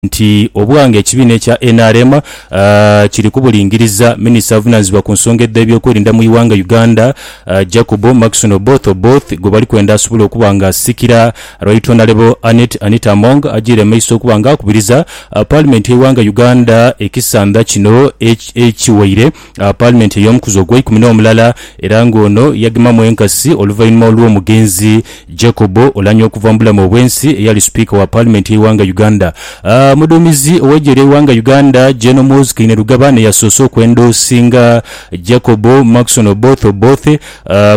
nti obwanga ekibiina ekya nrm kiri kubulingiriza, minisita avunaanizibwa ku nsonga edh'ebyokwerinda mu ighanga Uganda, Jacob Maxon Oboth Oboth gwe bali kwenda asobole okuba nga asikira Right Honourable Annet Anita Among ajiire maiso okuba nga akubiriza Paalimenti y'eighanga Uganda ekisandha kino ekiwaire gha Paalimenti ey'omukuzi ogweikumi n'omulala era nga ono yagemamu enkasi oluvainhuma olw'omugenzi Jacob Oulanyah okuva mu bulamu obwensi eyali Sipiika wa Paalimenti y'eighanga Uganda. Omuduumizi ow'eigye ly'eighanga Uganda Gen Muhoozi Kainerugaba n'eyasoose okw'endoosinga Jacob Maxon Oboth Oboth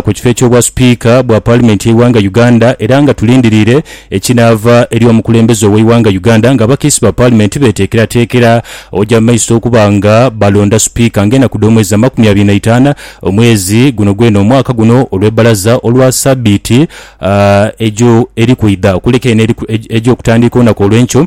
ku kifo eky'obwa Sipiika bwa Paalimenti y'eighanga Uganda era nga tulindiriire Ekinaava eri omukulembeze ow'eighanga Uganda nga abakiisi ba paalimenti beteekerateekera oja mu maiso okuba nga balonda Sipiika nga enaku dh'omwezi amakumi abiri na itaana omwezi guno gwene omwaka guno olw'ebbalaza olwa sabiiti ejo eri kwidha okuleka eno eja okutandiika olunaku olw'enkyo.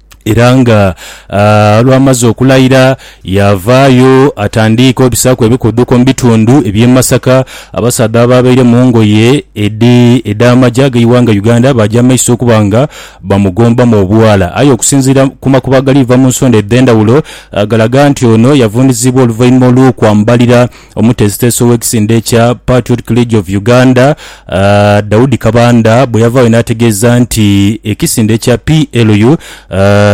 Era nga olwamaze okulaira, yaavaayo atandiike obisaaku ebikuuduko mu bitundu eby'e Masaka. Abasaadha abaabaire mu ngoye edh'amagye ag'eighanga Uganda baaja mu maiso okuba nga bamugombamu obwala. Aye okusinziira ku makubo agaliiva mu nsonda edh'endhawulo, galaga nti ono yavundhizibwa oluvainhuma olw'okwambalira Omuteesiteesi ow'ekisinde kya Patriotic League of Uganda, Daudi Kabanda bwe yavaayo n'ategeeza nti ekisinde kya PLU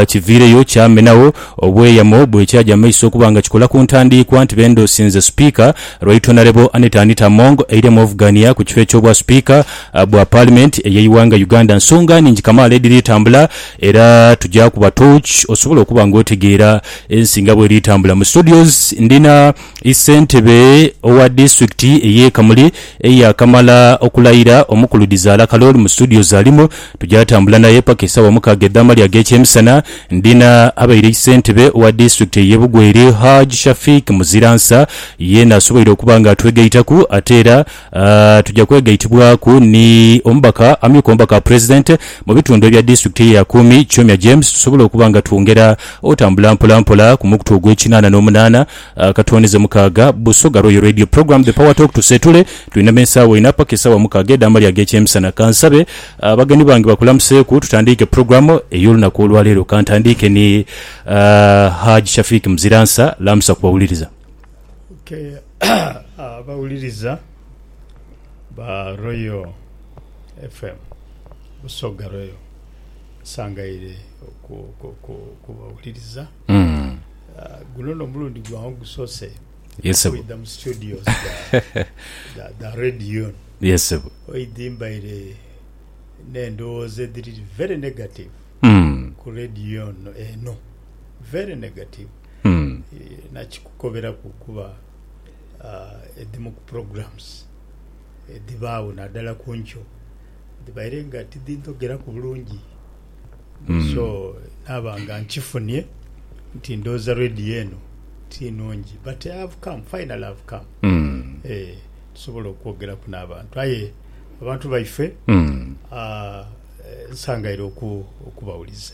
kiviireyo kyamenagho obweyamo bwe kyaja mu maiso okuba nga kikola ku ntandiikwa nti bendoosinze Sipiika Right Honourable Annet Anita Among eiremu ovugania ku kifo eky'Obwasipiika bwa Paalimenti ey'eighanga Uganda. Nsonga nhingi kamaala edhiri tambula era tugya kuba torch osobole okuba nga otegeera ensi nga bweri tambula. Mu studios ndina. Ssentebe owa disitulikiti ey'e Kamuli eyaakamala okulayira, Omukulu Dhizaala Kalooli mu studio za Limo tujaatambula naye paka esaawa mukaaga edh'amalya ag'ekyemisana. Ndhina abaire ssentebe owa disitulikiti ey'e Bugweri, Hajj Shafiq Muziransa, yeena asoboire okuba nga atwegaitaku ate era, Tuja kwegaitibwaku ni omubaka, amyuka omubaka wa Pulezidenti mu bitundu ebya disitulikiti eya Kumi, Kyomya James tusobole okuba nga twongera otambula mpola mpola ku mukutu ogw'ekinaana n'omunaana akatooneze mukaaga, Busoga Royal Radio Program The Power Talk Tuseetule tulina me saawa ina paka esaawa mukaaga edh'amalya ag'ekyemisana. Kansabe abagenyi bange bakulamuseeku tutandiike pulogulamu ey'olunaku olwaleero. Kantandiike ni Hajj Shafiq Muziransa, lamusa ku bawuliriza. Abawuliriza ba Royal FM Busoga Royal nsangaire okubawuliriza mm. Ah, guno no mulundi gwange gusose kwidha mu studios da radio yesebo oidhi mbaire n'endowooza edhiri very negative mm. ku radio eno very negative mm. Eh, nakikukoberaku kuba ah, edhimu ku programs edhibaagho naddala ku nkyo dhibaire nga tidhindhogeraku bulungi mm. so naaba nga nkifunie nti ndooza radio eno ti nungi but I have come finally I have come mm. eh, tusobola okwogeraku n'abantu aye abantu baife mm. ah, eh, nsangaire oku, okubawuliza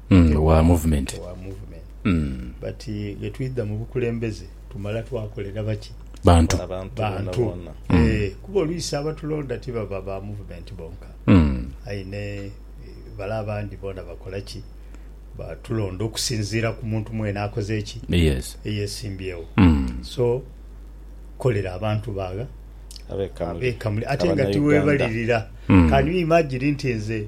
owa movement but bwetwidha mubukulembeze tumala twakolera baki? Bantu kuba oluisi abatulonda tibaba ba movement bonka aye ni bale abandi bona bakola ki? Batulonda okusinziira kumuntu mwene akoze ki? Eyesimbyewo so kolera abantu bagha abekamuli ate nga tiwebalirira can you imagine nti nze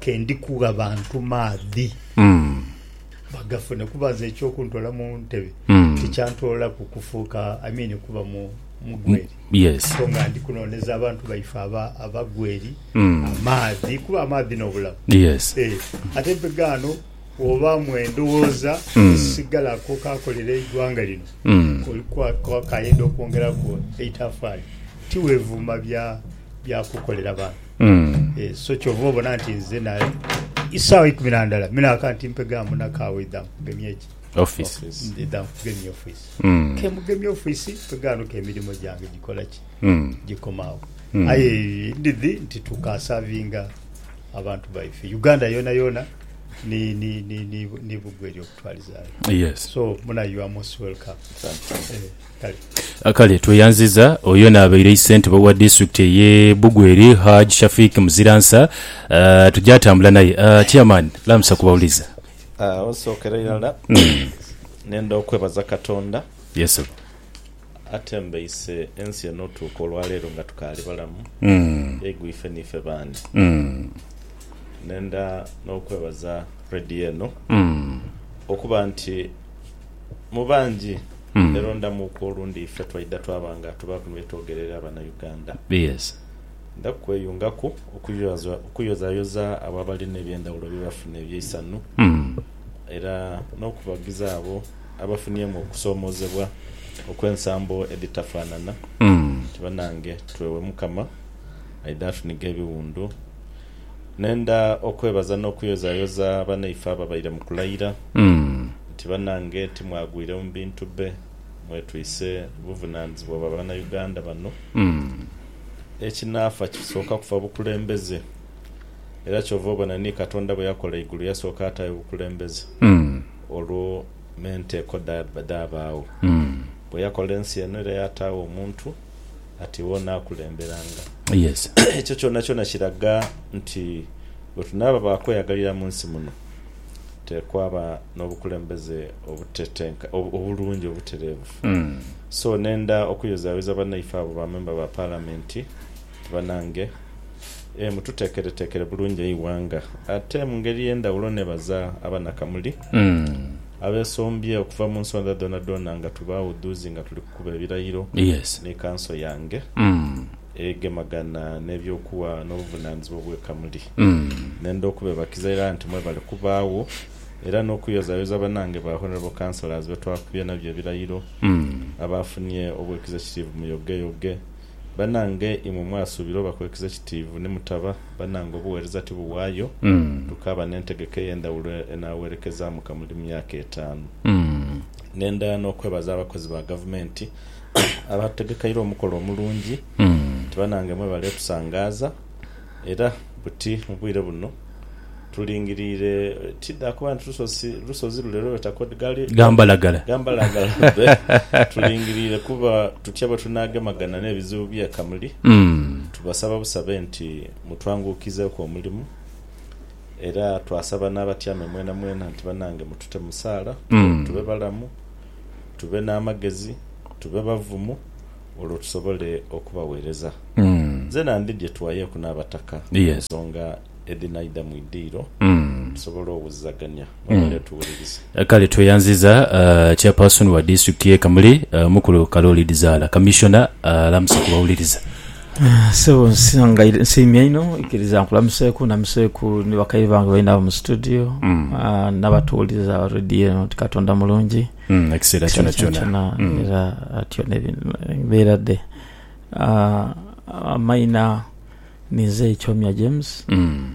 ke ndi kugha bantu maadhi bagafune, kuba nze eky'okuntoola mu ntebe tikyantoolaku kufuuka I mean kuba mugweri, so nga ndi kunooneza abantu baife abagweri amaadhi kuba amaadhi n'obulamu. Ate mpe ghano bw'obaamu endhoghoza esisigalaku okaakolera eighanga lino, oli kwakayenda okwongeraku eitafaali, tiwevuuma bya. byakukolera bantu mm. e, so kyova obona nti nze na isaawa ikumi nandala minaka nti mpegamu nakawa idhamu kugemya eki office idhamu kugemya office mm. kemugemya office mpeganuka emirimu gyange gikolaki mm. gikomawo mm. aye ndidhi nti tukasavinga abantu baife uganda yona yona ni ni ni ni, ni bugwe eryokutwalizayo yes so muna you are most welcome Thank you. Eh. Kale tweyanziza oyo naabaire isentebe owa disitulikiti eye Bugweri Hajj Shafiq Muziransa tugyatambula naye. Chairman lamusa ku bawulize. Osookera irala nenda okwebaza Katonda atembeise ensi eno otuuka olwaleero nga tukaali balamu eigwife niife baani. Nenda n'okwebaza Radio eno okuba nti. Mu bangi berondamuuku olundi ife twaidha twaba nga tuba bino byetwogerera abanauganda. Ndha kweyungaku okuyozayoza abo abalina ebyendhawulo byebafuna ebyeisanhu era n'okubagiza abo abafuniemu okusomozebwa okw'ensambo edhitafanana nti banange twewe Mukama aidha atunigha ebiwundu. Nenda okwebaza n'okuyozayoza banaife ababaire mu kulayira nti banange timwagwire mu bintu bbe mwetwise buvunanizibwa bwa Banauganda bano. Ekinaafa kisooka kufa bukulembeze era kyova obona ni Katonda bwe yakola eigulu yasooka ataayo bukulembeze olwo n'enteeko dhabaagho. Bwe yakola ensi eno era yataagho omuntu. ati iwe onaakulemberanga. Yes. Ekyo kyonakyona kiraga nti bwe tunaaba ba kweyagalira mu nsi muno, teekwaba n'obukulembeze obutetenka, ob, obulungi, obutereevu. So, nenda okuyozayoza banaife abo ba memba ba Paalamenti nti, Banange, ee, mututeekereteekere bulungi eighanga. Ate mu ngeri ey'endhawulo neebaza Abanakamuli abeesombye okuva mu nsondha dhoonadhoona nga tubaawudhuuzi nga tuli. Kuba ebirayiro ni kanso yange egemagana n'eby'okuwa n'obuvunanizibwa obweka muli. Nenda okubebakiza ira nti mwebale kubaagho era n'okuyozayoza banange ba Honourable Councillors be twakubye nabyo ebirayiro, abaafunye obwekiza ekitiivu mu yogeyoge. Banange imwe mwasuubira oba kwekiza ekitiivu ni mutaba, banange obuwereza ti buwaayo, tukaaba n'entegeka ey'endhawulo enaawerekezaamu kamuli mu myaka etaanu. Ngenda n'okwebaza abakozi ba Gavumenti abatutegekaire omukolo omulungi nti banange mwebale tusangaaza era buti mu bwire buno tulingiriire tidha kuba nti lusozi lusozi lule lwebeta kod gali Gambalagala. Gambalagala lube tulingiriire kuba tutya bwetunagemagana n'ebizibu by'e Kamuli. Tubasaba busabe nti mutwanguukizeeku omulimu. Era twasaba n'abatyaime mwenamwena nti, Banange mutute mu saala, tube balamu, tube n'amagezi, tube bavumu, olwo tusobole okubaweereza. Nzena ndi gye tuwayeeku n'Abataka ku nsonga edhinaidha mu idiiro, tusobole owulizagania. Mwebale tuwuliriza. Kale tweyanziza uh, chairperson wa district ye Kamuli uh, mukulu Kaloli Dizaala commissioner uh, alamusa ku bawuliriza. Ah, sebo nsanga nsiimye inho ikiriza nkulamuseeku namuseeku ni bakaire bange baina abo mu studio mm. uh, nabatuwuliriza aba radio eno nti katonda mulungi mm, ekiseera kyona kyona mm. era atyo nebeera de uh, amaina ninze ekyomya james mm.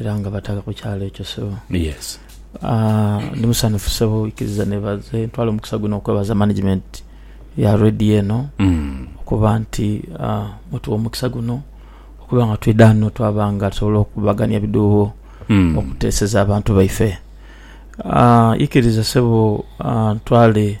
era nga bataga ku kyalo ekyo sebo. Yes. Ah, ndi musanhufu sebo, ikiriza nebaze, ntwala omukisa guno okwebaza management ya radio eno Mm. okuba nti ah, mutuwa omukisa guno okuba nga twidha ghano twaba nga tusobola okukubagania ebiduubo Mm. okuteeseza abantu baife. Ah, ikiriza sebo ah, ntwale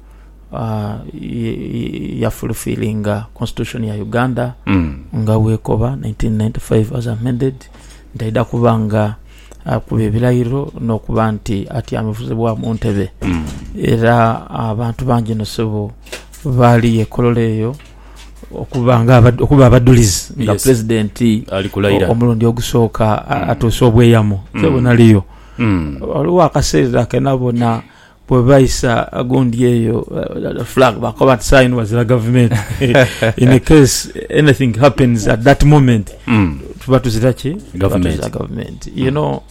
ya fulfillinga Constitution ya Uganda nga bwekoba 1995 as amended nti aidha kuba nga akuba ebilairo nokuba nti atyamizibwa mu ntebe era abantu bangi inho sebo baali yekololo eyo okuba abadulizi nga president omulundi ogusooka atuuse obweyamo nze bwenaliyo ghaligho akaseera kenabona Bwe baisa agundi eyo flag bakoba nti saa ino wazira gavumenti in a case anything happens at that moment mm. tuba tuzira ki tuzira gavumenti you know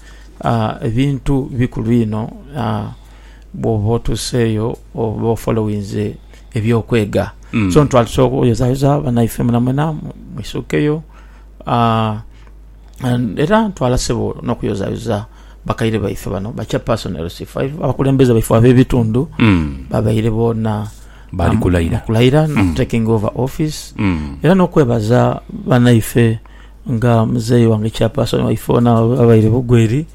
uh, ebintu bikulu ino uh, bwoba otuseeyo oba ofolowinze ebyokwega mm. so ntwalisa okuyozayoza banaife mwenamwena mwisukeyo uh, Era ntwala sebo nokuyozayoza bakaire baife bano, ba chairperson LC5, abakulembeze baife abebitundhu babaire boona bali kulaira na taking over office era nokwebaza banaife nga muzei wange chairperson waife ono abaire bugwe eri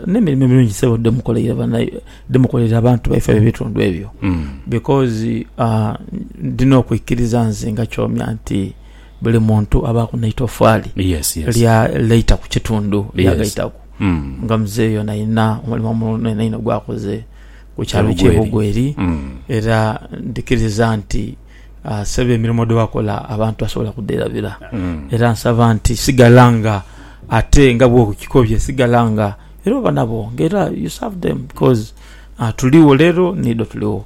nemirimo emirungi sebo dhemukoleire abantu baife abebitundhu ebyo because ndina okwikiriza nze nga kyomya nti buli muntu abaaku n'eitofaali lya laita ku kitundu ly'agaitaku. Nga muzei ono alina omulimo omunene inho gw'akoze ku kyalo ky'e Bugweri, era ndhikiriza nti Ssebo emirimo dhe wakola abantu basobola kudherabira. Era nsaba nti sigala nga ate nga bw'okikobye sigala nga era oba nabo nga era you serve them coz tuligho leero, niidho tuligho.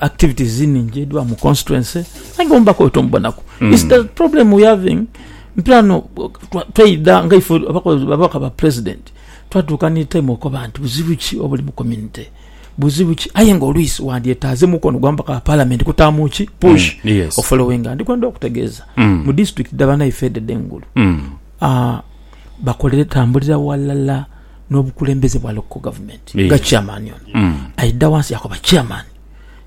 activities ningi edhiba mu constituency aye nga omubaka oyo tomubonaku mm. is the problem we having mpirano twaidha nga ife ababaka ba president twatuuka ni time okoba nti buzibu ki obuli mu community buzibu ki aye nga oluisi wandyetaaze mukono gwa mubaka wa parliament kutaamu ki push mm, yes. ofolowinga ndi kwenda okutegeeza mm. mu district dhabana ife edede engulu mm. uh, bakolere tambulira walala nobukulembeze bwa local government nga yeah. chairman ono mm. aida wansi yakoba chairman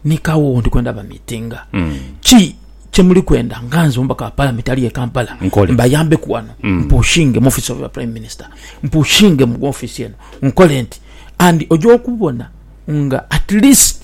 nikawo ndi kwenda bamitinga mm. ki kyemuli kwenda nga nze omubaka wa palamenti ali e kampala mbayambe ku wano mm. mpushinge mu office of the prime minister mpushinge mu office eno nkole nti and oja okubona nga at least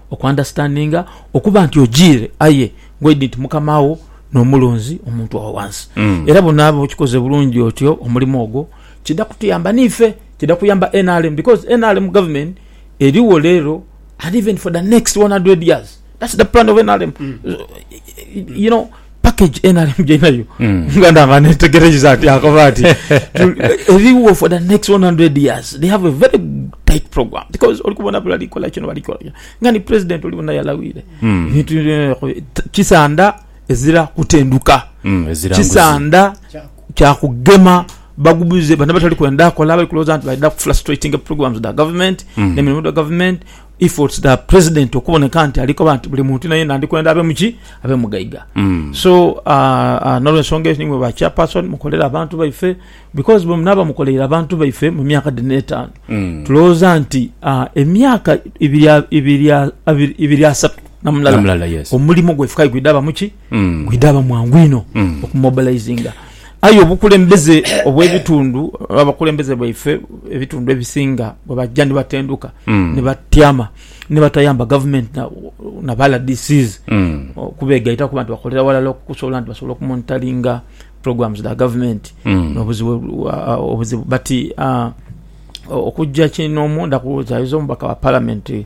oku understandinga okuba nti ojiire aye ngoidi nti mukama wo n'omulunzi omuntu awo wansi mm. era bunaaba okikoze bulungi otyo omulimu ogwo kida kutuyamba niife kida kuyamba nrm because nrm government eriwo leero and even for the next 100 years that's the plan of nrm mm. you know package NRM gyainayo nga ndanga netegereiza nti akoba nti eriwo for the next 100 years they have a very tight program because oli kubona bali kola kino bali kola nga ni president oli bona yalawire bintu kisanda ezira kutenduka kisanda kyakugema bagubuze bana batali kwenda akola bali kuloza nti baida ku frustrating programs da government mm. ne mirimu da government If it's the president okuboneka nti alikoba nti buli muntu yenayena ndikwenda abe muki abe mugaiga mm. so uh, uh, nolwensonga eyo nimwe ba chairperson mukolera abantu baife because bwemunaba mukoleire abantu baife mu myaka dhino etaano mm. tulowooza nti uh, emyaka ibiri asatu namulala yes. omulimo gwaife kaigwidaba muki Bwidha aba mwangu inho okumobilizinga. Aye obukulembeze obw'ebitundu, abakulembeze baife ebitundu ebisinga bwe baja ni batenduka ni batyama ni batayamba gavumenti na ba LDCs okubegaitaku oba nti bakolera ghalala okusobola nti basobola okumonitalinga programs dha gavumenti n'obuzibu obuzibu. Bati okuja kinho omu ndha kubuuza, aye oze omubaka wa palamenti...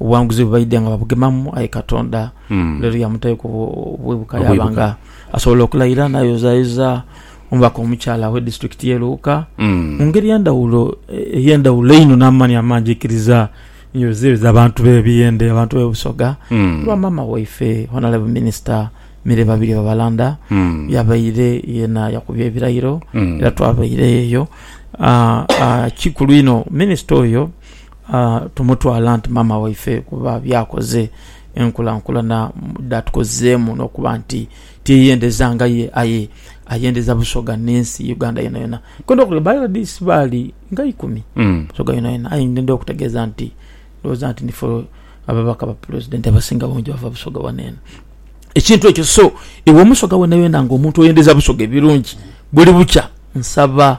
Obuwanguzi bwe baidha nga babugemamu, aye Katonda lero yamutaiku obwibuka yaaba nga asobola okulaira n'ayozayoza omubaka omukyala ow'edisiturikiti y'e Luuka mu ngeri endhawulo ey'endhawulo einho n'amaani amangi aikiriza n'ayozayoza abantu b'e Buyende, abantu b'e Busoga olwa maama waife Honalebo Minisita Milly Babirye Babalanda yabaire yeena yakubye ebirairo era twabaireyo eyo. Kikulu inho Minisita oyo. Tumutwala nti maama waife kuba by'akoze, enkulankulana dh'atukozeemu n'okuba nti tiyeyendeza nga ye aye ayendeza Busoga n'ensi Uganda yonayona. Nkwenda okule, by RDC baali nga ikumi Busoga yonayona aye ndidha okutegeeza nti ndhowooza nti nife ababaka ba Pulezidenti abasinga obungi bava Busoga wano eno. Ekintu ekyo so iwe Omusoga wonayona ng'omuntu oyendeza Busoga ebirungi buli bukya, nsaba.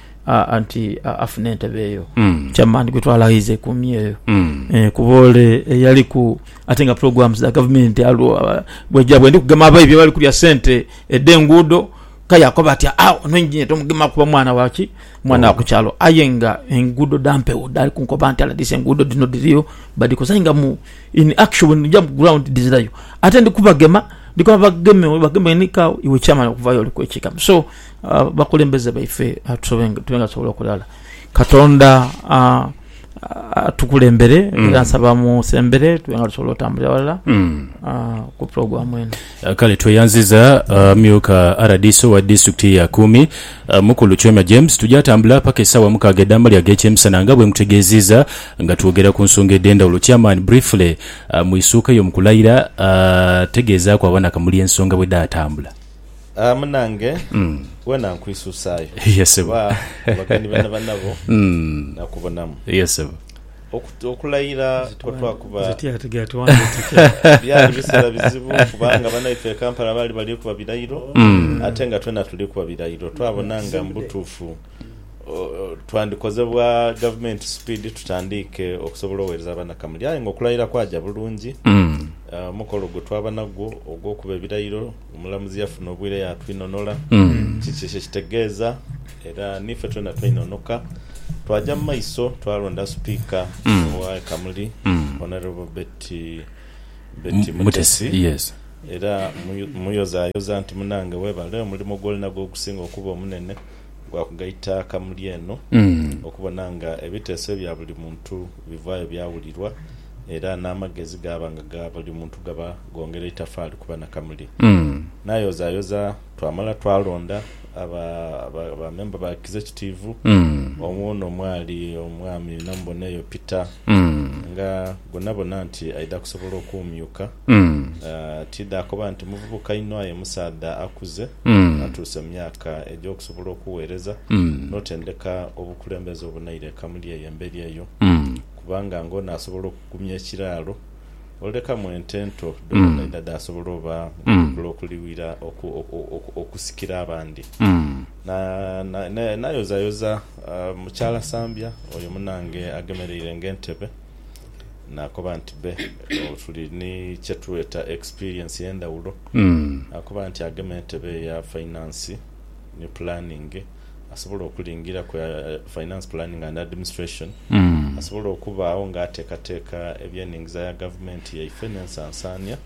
anti afune entebe eyo mm. chairman gwetwala aize kumi eyo mm. eh, kuba ole eyaliku ate nga programs za government aliwo bweja bwendi kugema abayi byebali kulya sente ede enguudo kayakoba ati ah ono engineer tomugema kuba mwana waki mwana wa kukyalo aye nga enguudo dampewo dali kunkoba nti aladise enguudo dino diriyo badikoze nga mu in action ja ground dizirayo ate ndi kubagema ndikuba bageme bageme nika iwe chairman okuvayo oli kwekikamu so abakulembeze baife tusobe nga tusobola okola ghala katonda atukulembere mm. era nsaba musembere tube nga tusobola otambulira walala mm. ah, ku puroguramu eno ah, kale tweyanziza ah, myuka rdc wa disitulikiti ya kumi mukulu chwema james tujatambula paka esawa mukaga edamali agekyemisana nga bwemutegeziza nga twogera ku nsonga edendawulo chairman briefly mu isuuka eyo mukulayira tegeezaaku abanakamuli ensonga bwedatambula Ah, munange, wena nkwisusaayo. Ye ssebo. Kuba abagenyi bena banabo nakubonamu. Ye ssebo. Okut- Okulayira kwe twakuba Zitya ati gati wange tutya? byali biseera bizibu kubanga banaife e Kampala baali bali kuba birayiro ate nga twena tuli kuba birayiro. Twabona nga mu butuufu twandikoze bwa gavumenti sipiidi tutandiike okusobola oweereza abanakamulya aye nga okulayira kwaja bulungi. Mm. Ah, omukolo gwe twaba nagwo ogw'okuba ebirayiro, omulamuzi yafuna obwire yaatwinonola Mm. kiki kye kitegeeza era niife twena twainonoka. Twaja mu maiso twalonda sipiika Mm. owa Kamuli, Mm. Honourable Betty Betty M- Mutesi, Mutesi, yes. era mmuyu- mmuyozayoza nti munange webale, omulimo gw'olinagwo gusinga okuba omunene. gwa kugaita kamuli eno okubona nga ebiteeso ebya buli muntu bivaayo byawulirwa era n'amagezi gaaba nga ga buli muntu gaba gongera eitafaali ku banakamuli. Nayozayoza twamala twalonda aba aba memba ba Kizekitiivu omwo n'omwali Omwami Namuboneyo Peter nga gwonabona nti aidha kusobola okumyuka. Tidha akoba nti muvubuka inho aye musaadha akuze atuuse mu myaka egy'okusobola okugheereza n'otendeka obukulembeze obunaire eka muli eyo emberi eyo, kubanga ng'ono asobola okugumya ekiraalo olekamu ente ento dhoodhoona edha dhaasobola oba ng'odhikula okuliwira okusikira abandi. Nayozayoza mukyala Sambya oyo munange agemereire ng'entebe. Naakoba nti, Be, tuli ni kye tweta ekisipiriyensi ey'endhawulo. Naakoba nti, Agema entebe eya fainansi ni pulaningi, asobola okulingira ku Finance Planning and Administration, asobola okubaagho ng'ateekateeka ebyenhingiza ya gavumenti yaife n'ensansaania,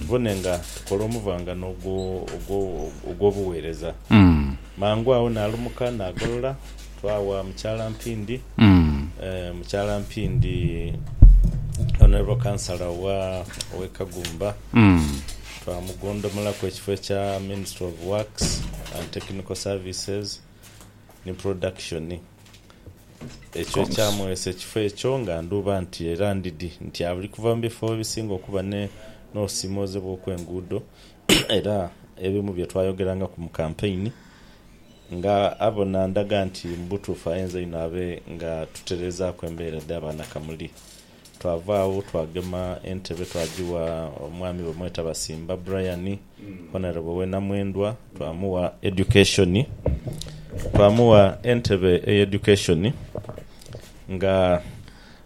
tubone nga tukola omuvangano ogw'obuweereza. Mangu agho naalumuka naagolola. Twawa Mukyala Mpindi eeh Mukyala Mpindi Honourable Councillor wa owe Kagumba twamugondomolaku ekifo ekya Ministry of Works and Technical Services ni Production ekyo ekyamwesa ekifo ekyo nga ndhuba nti era ndidhi nti ali kuva mu bifo ebisinga okuba ne n'osimooze bw'okwenguudo era ebimu bye twayogerangaku mu kampeyini. Nga abona ndaga nti mu butuufu ayenza inho abe nga tutereezaaku embeera dha Banakamuli. Twava agho twagema entebe twagigha omwami bamweta Basimba Brian, Honourable w'e Namwendwa, twamugha Education. Twamugha entebe ey'Education nga...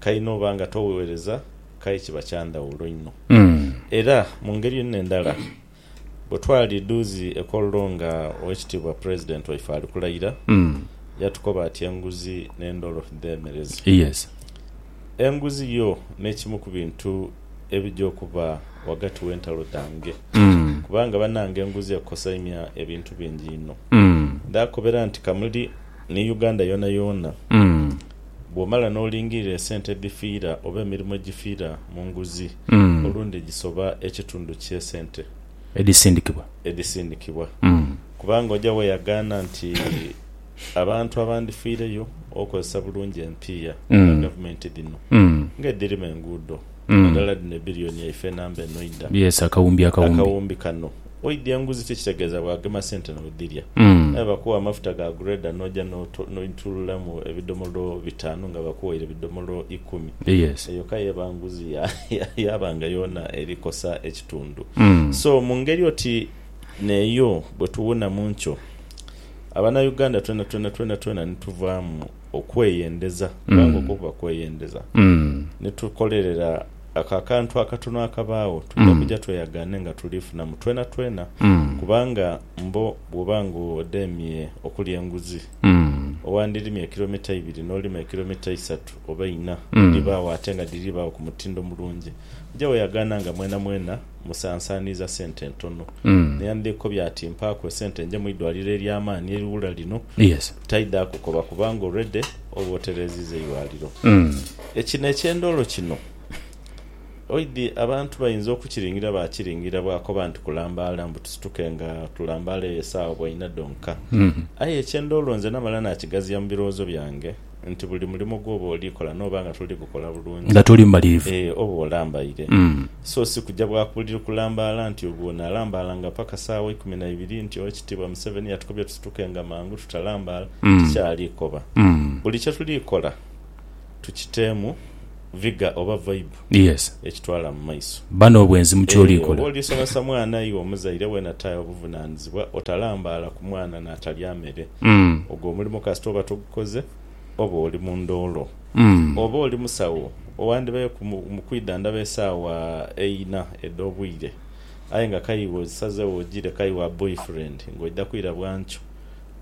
kai n'oba nga togheereza kai kiba kya ndhawulo inho. Era mu ngeri yona endala, bwe twali dhuuzi e Kololo nga Owekitiibwa Pulezidenti waife ali kulayira, yatukoba ati enguzi n'endholo dheemereze. Enguzi yo n'ekimu ku bintu ebija okuba ghagati w'entalo dhange kubanga banange enguzi ekosaimya ebintu bingi inho. Ndaakobera nti kamuli ni Uganda yoonayoona Bw'omala n'olingirira esente edhifiira oba emirimu egifiira mu nguzi, olundi gisoba ekitundu ky'esente Edhisindikibwa. edhisindikibwa. Kubanga oja weeyagaana nti abantu abandifiireyo olw'okukozesa bulungi empiiya dha Gavumenti dhino ng'edhirima enguudo, naddala dhino ebbiriyoni yaife enamba enoidha Yes, akawumbi akawumbi. akawumbi kano. Oidya enguzi ki ekitegeeza bw'agema sente n'odhirya. Aye bakuwa amafuta ga grader n'oja n'oitululamu ebidomolo bitaanu nga bakuwaire bidomolo ikumi. Eyo ka y'eba nguzi yaaba nga yoona eri kosa ekitundu. So mu ngeri oti n'eyo bwe tuwunamu ntyo, Abanauganda twenatwena twenatwena ni tuvaamu okweyendeza, kubanga okwo kuba kweyendeza, ni tukolerera. Ako akantu akatono akabaagho twidha kuja tweyagaane nga tuliifunamu twenatwena. Kubanga mbo bw'oba ng'odheemye okulya enguzi, owandirimye kilomita ibiri n'olima ekilomita isatu oba inha, edhibaagho ate nga dhiribaagho ku mutindo mulungi, oja weyagaana nga mwenamwena. musansaaniiza sente ntono. Naye andhekobya ati, Mpaaku esente nje mu idwaliro ery'amaani eriwula lino. Taidhaaku koba kubanga already oba otereeziiza eidwaliro. Ekina eky'endoolo kino oidhi abantu bainza okukiringira baakiringira bwakoba nti kulambaala mbu tusituke nga tulambaala eyo esaawa bwaina dhonka. Aye eky'endoolo nze namala naakigaziya mu birowoozo byange. nti buli mulimo gwoba oli kola noba nga toli gukola bulungi, nga toli mumalirivu, ee, oba olambaire. Mm. So si kuja bwa kubuliri kulambaala nti obwo nalambaalanga paka saawa ikumi na ibiri nti Owekitiibwa Museveni yatukobye tusitukenga mangu tutalambaala, Mm. tikyali koba. Mm. Buli kye tuli kola tukiteemu vigour oba vibe. Yes. ekitwala mu maiso. Bba n'obwenzi mu ky'oli Eeh, oba kola. oli somesa mwana iwe omuzaire weena ta obuvunanizibwa otalambaala ku mwana natalya mere. Mm. Ogwo omulimo kasita oba togukoze oba oli mu ndoolo. Mm. Oba oli musawo owandibayo ku mu mu kwidhandhaba esaawa eina edh'obwire aye nga kaiwe ozisazewo ojire kaiwa boyfriend ng'oidha kwira bwankyo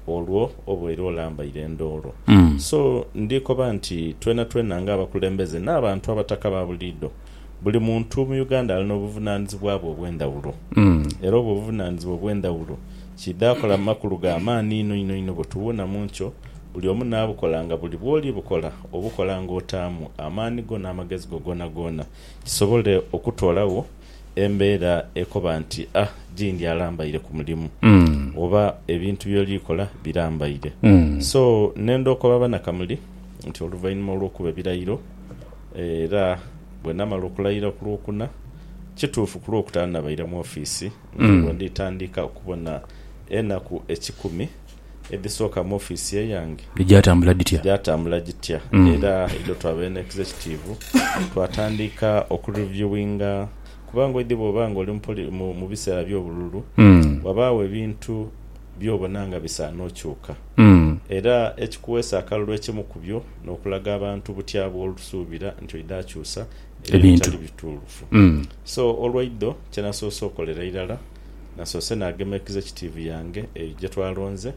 Olwo oba era olambaire endoolo. So, ndhikoba nti twenatwena nga abakulembeze n'abantu abataka ba buliidho, buli muntu mu Uganda ali n'obuvunaanizibwa bwe obw'endhawulo. Era obwo obuvunaanizibwa obw'endhawulo kiidha akola makulu ga maani inho inho inho bwe tuwuuna mu nkyo, buli omu n'abukola nga buli bw'oli bukola obukola ng'otaamu amaani go n'amagezi go goonagoona kisobole okutoolagho embeera ekoba nti a gindi alambaire ku mulimu oba ebintu by'oli kola birambaire. So ne ndhokoba Banakamuli nti oluvainhuma olw'okuba ebirayiro era bwe namala okulayira ku Lwokuna, kituufu ku Lwokutaano nabaire mu ofiisi nga bwe ndhi tandika okubona enaku ekikumi. edhisooka mu ofiisi eyange Gyatambula gitya? gyatambula gitya era idho twaba eno executive twatandiika oku reviewinga kuba ngoidhi bwoba nga oli mu biseera by'obululu wabaagho ebintu byobona nga bisaana okyuka era ekikuweesa akalulu ekimu ku byo n'okulaga abantu butya bw'osuubira nti oidha kyusa ebyo ebitali bituufu so olwaidho kyenasoose okolera irala Nasoose naagemeikiza ekitiivi yange eyo gye twalonze,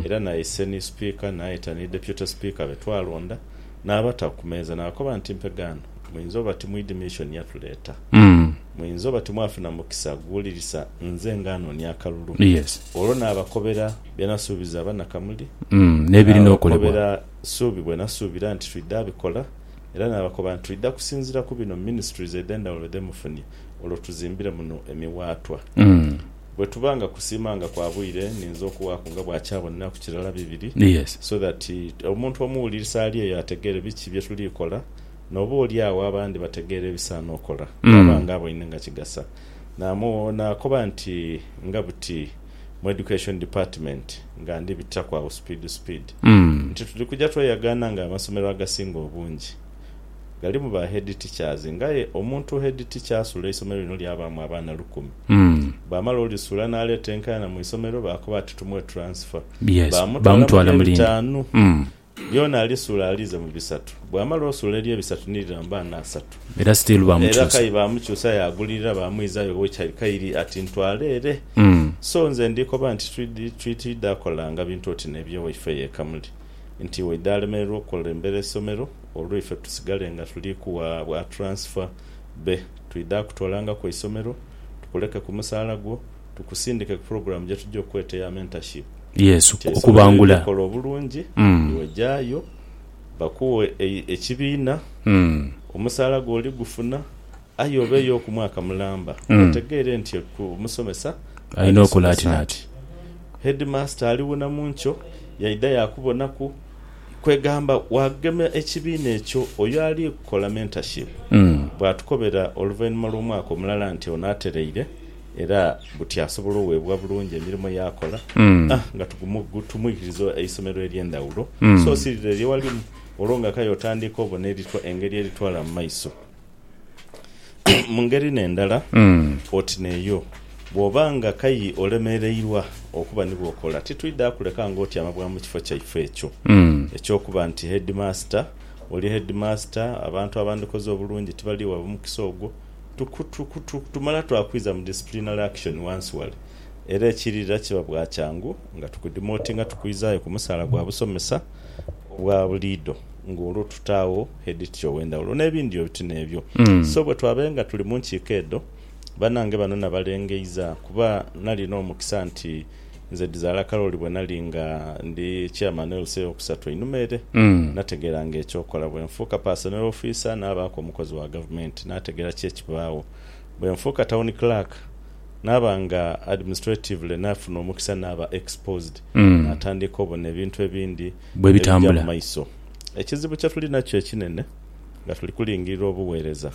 era naise ni Sipiika, naayeta ni Deputy Sipiika be twalonda, naabata ku meeza naakoba nti, Mpegaano, muinza oba timwidhi missioni yatuleeta. Muinza oba timwafuna mukisa guwulirisa nze nga anoonia akalulu. Olwo naabakobera bye nasuubiza Abanakamuli, naabakobera suubi bwe nasuubira nti twidha bikola, era naabakoba nti twidha kusinziira ku bino Ministries edh'endhawulo dhe mufunye. olwo tuzimbire muno emiwaatwa. Bwe tuba nga kusiima nga kwa bwire, ninza okuwaaku nga bwakyaboneraku kirala bibiri, so that omuntu omuwulirisa ali eyo ategeere biki bye tuli kola, n'oba oli agho abandi bategeere ebisaana okola bwaba nga aboine nga kigasa. Naakoba nti nga buti mu Education Department nga ndi bitiraku agho supiidi supiidi, nti tuli kuja tweyagaana nga amasomero agasinga obungi. Ghalimu ba head teachers nga aye omuntu head teacher asula eisomero lino lyabaamu abaana lukumi. Bwamala olisula n'aleeta enkaayana mu isomero baakoba ati tumuwe transfer. Baamutwala mu lye bitaanu. Lyona alisula aliize mu bisatu. Bwamala osula elye bisatu ni lira mu baana asatu. Era kayi baamukyusa yaagulirira baamwizayo we kyali kairi ati ntwala ere. So nze ndikoba nti twidha kolanga bintu oti n'ebyo waife y'e Kamuli. nti waidha alemererwa okukulembera eisomero olwo ife tusigale nga tuli kuwa bwa transfer be twidha kutwalanga ku eisomero tukuleke ku musaala gwo tukusindike ku pulogulaamu gye tugya okukweta eya mentorship Yesu, nti eisomero liri okubangula. likola obulungi Mm. iwe gyayo bakuwe e, ekibiina, Mm. omusaala gwo oligufuna. Aye obeeyo oku mwaka mulamba otegeere nti eku omusomesa Alina oku alisomesa latinati. nti heedimaasita ali wona mu nkyo yaidha yaakubonaku. Kwegamba waagema ekibiina ekyo oyo ali kukola mentorship bwaatukobera oluvainhuma lw'omwaka omulala nti ono atereire era buti asobola oweebwa bulungi emirimo yaakola a nga tugumu tumwikiriza eisomero ery'endhawulo so si lire lyewalimu olwo nga kaye otandiika obona eritwa engeri eritwala mu maiso. Mu ngeri n'endala, oti n'eyo, bw'oba nga kayi olemereirwa okuba ni bw'okola, titwidha kuleka ng'otyama bwa mu kifo kyaife ekyo eky'okuba nti heedimaasita. Oli heedimaasita, abantu abandikoze obulungi tibali gha mukisa ogwo. Tumala twakwidha mu disciplinary action ghansi ghale, era ekiirira kiba bwa kyangu nga tukudimootinga tukwizaayo ku musaala gwa busomesa obwa buliidho ng'olwo tutaagho editya ow'endhawulo n'ebindi oti n'ebyo. So bwe twabaenga tuli mu nkiiko edho, banange bano nabalengeiza kuba nalina omukisa nti nze Dhizaala Karoli bwe nali nga ndi Chairman wa LC ey'okusatu einhuma ere, nategeeranga eky'okola. Bwe nfuuka Personnel Officer naabaaku omukozi wa Gavumenti, naategeera ki ekibaagho. Bwe nfuuka Town Clerk naaba nga administratively naafuna omukisa naaba exposed, naatandiika obona ebintu ebindi. bwebitambula. Ebija mu maiso. Ekizibu kye tuli nakyo ekinene nga tuli kulingirira obugheereza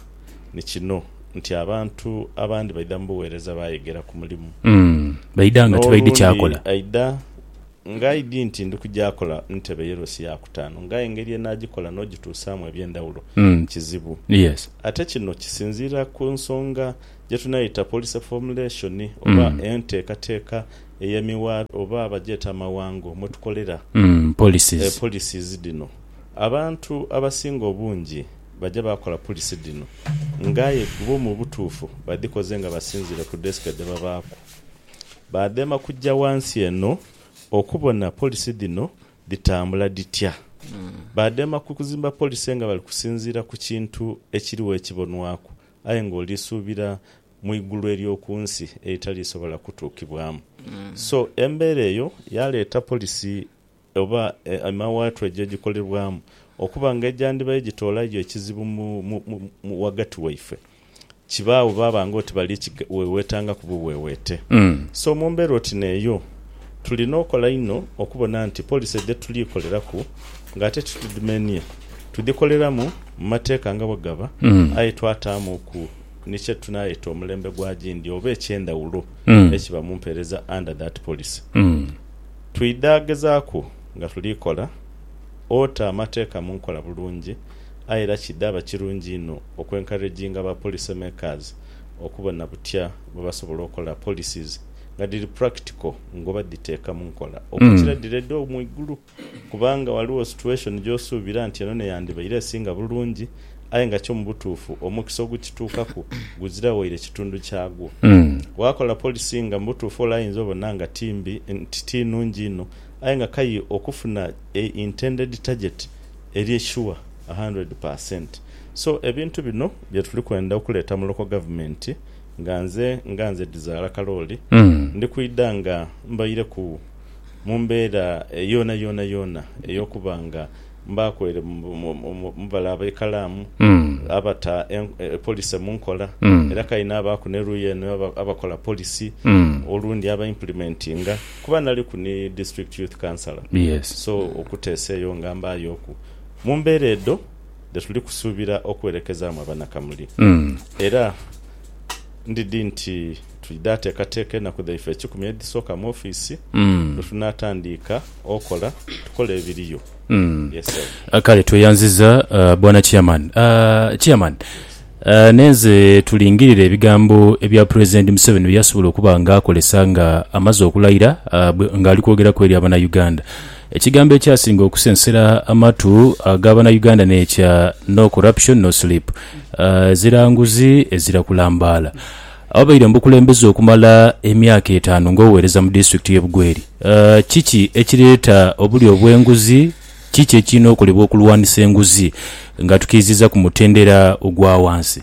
ni kino nti abantu abandi baidha mu bugheereza baayegera ku mulimu. Baidha nga tibaidhi kyakola. N'olundi aidha ng'aidhi nti ndi kuja kola ntebe ye loosi ya kutaanu, ng'aye engeri enaagikola n'ogituusaamu eby'endhawulo kizibu. Ate kino kisinziira ku nsonga gye tunaayeta policy formulation oba enteekateeka ey'emiwaatwa oba bagyeta amawango mwetukolera, policies, policies dhino, abantu abasinga obungi baja baakola policy dhino nga aye bbo mu butuufu badhikoze nga basinziire ku desk dhebabaaku. Baadheema kuja wansi eno okubona policy dhino dhitambula dhitya. Baadheema ku kuzimba policy nga bali kusinziira ku kintu ekiriwo ekibonwaku aye ng'oli suubira mu igulu ery'oku nsi eritalisobola kutuukibwamu. So, embeera eyo yaaleeta polisi oba emawaatwa ejo egikolebwamu okuba nga egyandibaire gitoola yo ekizibu ghagati waife, kibaagho baaba ng'oti bali kiweweetangaku buweweete. So, mu mbeera oti n'eyo, tulina okola inho okubona nti polisi dhe tuli koleraku ng'ate titudhimenie, tudhikoleramu mu mateeka nga bwe gaba aye twataamuku. ni kye tunaayeta omulembe gwa gindi oba eky'endhawulo ekiba mu mpeereza under that policy. Twidha gezaaku nga tuli kola ota amateeka mu nkola bulungi aye era kidhaba kirungi inho oku encouraginga ba policy makers okubona butya bwe basobola okola policies nga dhiri practical ng'oba dhiteeka mu nkola okukira dhire dho mu igulu. Kubanga ghaligho situation gy'osuubira nti eno n'eyandibaire esinga bulungi, aye nga kyo mu butuufu omukisa ogukituukaku guzira waire kitundu kyagwo. Waakola policy nga mu butuufu ole ayinza obona nga ti mbi, nti ti nnungi inho, aye nga kaye okufuna a intended target eri sure a hundred per cent. So ebintu bino bye tuli kwenda okuleeta mu local government nga nze nga nze Dhizaala Kalooli ndi kwidha nga mbaireku. mu mbeera yoona yoona yoona ey'okuba nga mbaaku ere mu bale ab'ekalaamu abata polisi mu nkola, era kale naabaaku ni luuyi eno abakola polisi olundi aba implementinga kuba naliku ni District Youth Councillor. So okuteesa eyo nga mbaayooku. Mu mbeera edho dhe tuli kusuubira okuwerekezaamu Abanakamuli era ndidhi nti. Twidha teekateeka enaku dhaife ekikumi edhisooka mu ofiisi lwe tunaatandiika okola, tukole ebiriyo. Yes sir. Kale tweyanziza bwana chairman. Chairman nenze tulingirire ebigambo ebya president Museveni byeyasobola okuba nga akolesa nga amaze okulayira nga ali kwogera ku eri abana Uganda. Ekigambo ekyasinga okusensera amatu aga bana Uganda nekya no corruption no sleep. Ezira nguzi ezira kulambaala. Awabaire mu bukulembeze okumala emyaka etaanu ng'oweereza mu disitulikiti y'e Bugweri, kiki ekireeta obulya obw'enguzi? Kiki ekirina okolebwa okulwanisa enguzi nga tukiiziza ku mutendera ogwa wansi?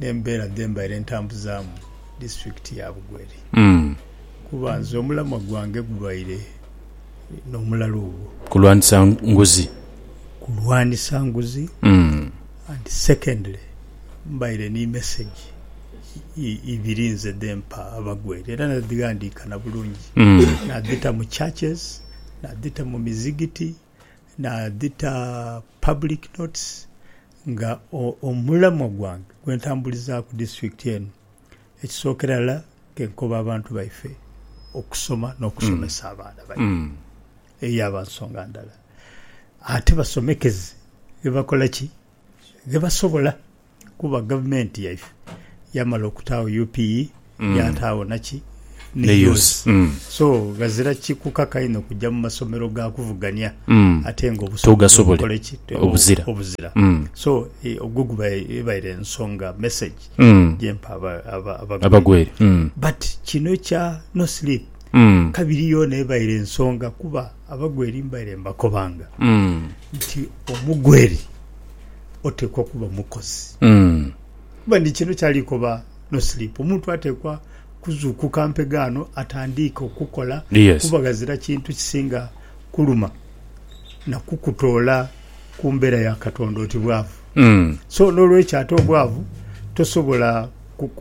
n'embeera dhe mbaire ntambuzaamu disitulikiti ya Bugweri kuba nze omulamwa gwange gubaire n'omulalu ogwo. Kulwanisa nguzi. Kulwanisa nguzi and secondly mbaire ni mesegi ibiri nze dhe mpa Abagweri era nadhighandiika na bulungi nadhita mu churches, nadhita mu mizigiti. nadhita public notes nga omulamwa gwange gwentambulizaaku disitulikiti eno ekisookera irala kenkoba abantu baife okusoma n'okusomesa mm. abaana baife mm. eyo aba nsonga ndala ate basomekeze bebakola ki ghe basobola kuba gavumenti yaife yamala okutaagho UPE mm. yataagho naki neyuzi mm. so ghazira kikukaka inho kujja mu masomero ga kuvugania mm. ate nga obusobola obuzira, obuzira. Mm. so e, ogwo guba ebaire ensonga message mm. gyempa abagwere mm. but kino kya no sleep mm. kabiri yona ebaire ensonga kuba Abagweri mbaire mbakobanga nti omugweri oteekwa kuba mukozi kuba ni kino kyali koba no Sleep. Omuntu ateekwa kuzuukuka mpegaano atandiike okukola kuba ghazira kintu kisinga kuluma na kukutoola ku mbeera ya Katonda oti bwavu. So n'olwekyo ate obwavu tosobola.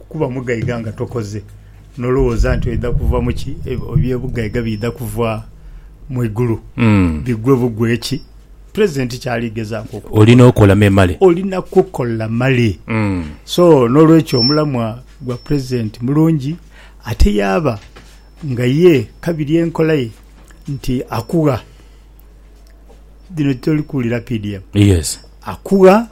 Kuba mugaiga nga tokoze nolowooza nti oidha kuva mu ki? Eby'obugaiga biidha kuva mu igulu bigwe bugwe ki? Present ky'ali gezaaku okukola, Olina okola memale. olina kukola male. So n'olwekyo omulamwa gwa present mulungi ate yaaba nga ye kabiri enkola ye nti akugha. dhino toli kuwulira PDM. Yes. Akugha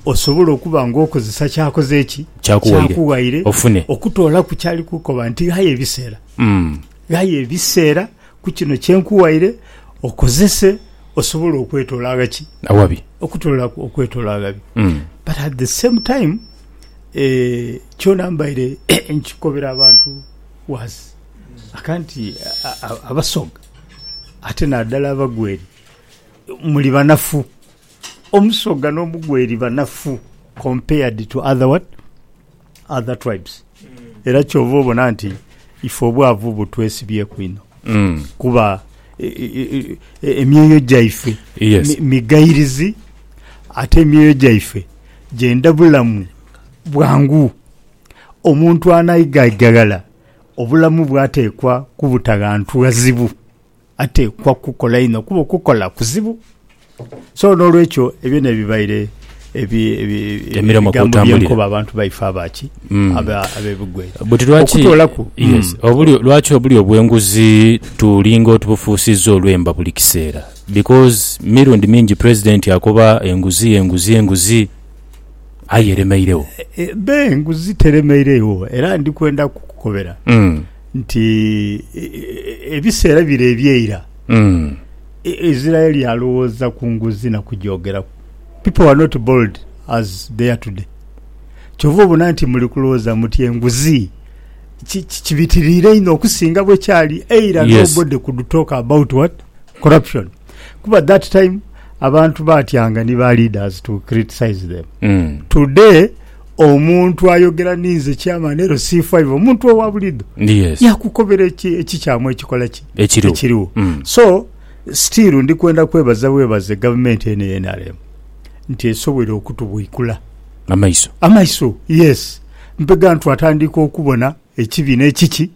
osobola okuba nga okozesa kyakoze eki kyakughaire ofune okutoolaku kyali kukoba nti ghaya ebiseera mm. ghaya ebiseera ku kino kyenkughaire okozese osobola okwetoola aghaki awabi okutoola okwetoola aghabi mm. but at the same time eh, kyona mbaire nkikobera abantu was akanti abasoga Ate nadala abagweri muli banafu. Omusoga no mugweri banafu compared to other what? Other tribes. Era kyova obona nti ife obwavu butwesibyeku inho. Mm. Kuba e, e, e, emyoyo gyaife yes. migairizi ate emyoyo gyaife gyenda bulamu bwangu omuntu anaigaigaghala Obulamu bwateekwa kubuta ghantu ghazibu, ateekwa kukola inho kuba okukola kuzibu. So n'olwekyo ebyo n'ebibaire ebigambo bye nkoba abantu baife aba ki? Ab'ebigwere. Buti lwaki, yes, obulyo, lwaki obulyo bw'enguzi tulinga otubufuusizza olwemba buli kiseera? Because mirundi mingi President akoba enguzi, enguzi, enguzi. aye eremeiregho. Be nguzi teremeiregho, era ndi kwenda kukukobera nti ebiseera bire ebyeira Isiraeli yalowooza ku nguzi na kugyogeraku. People were not bold as they are today. Kyova obona nti muli kulowooza muti enguzi kibitiriire inho okusinga bwekyali eira. Nobody could talk about what? Corruption. kuba that time abantu batyanga ni ba leaders to criticize them mm. today omuntu ayogera ninze chairman ero c5 omuntu owa bulido yes. yakukobera ekikyamu ekikola ki ekiriwo mm. so still ndi kwenda kwebaza bwebaze gavumenti eno enrm nti esobwere okutubwikula amaiso amaiso yes mpega ntu atandika okubona ekibi n'ekiki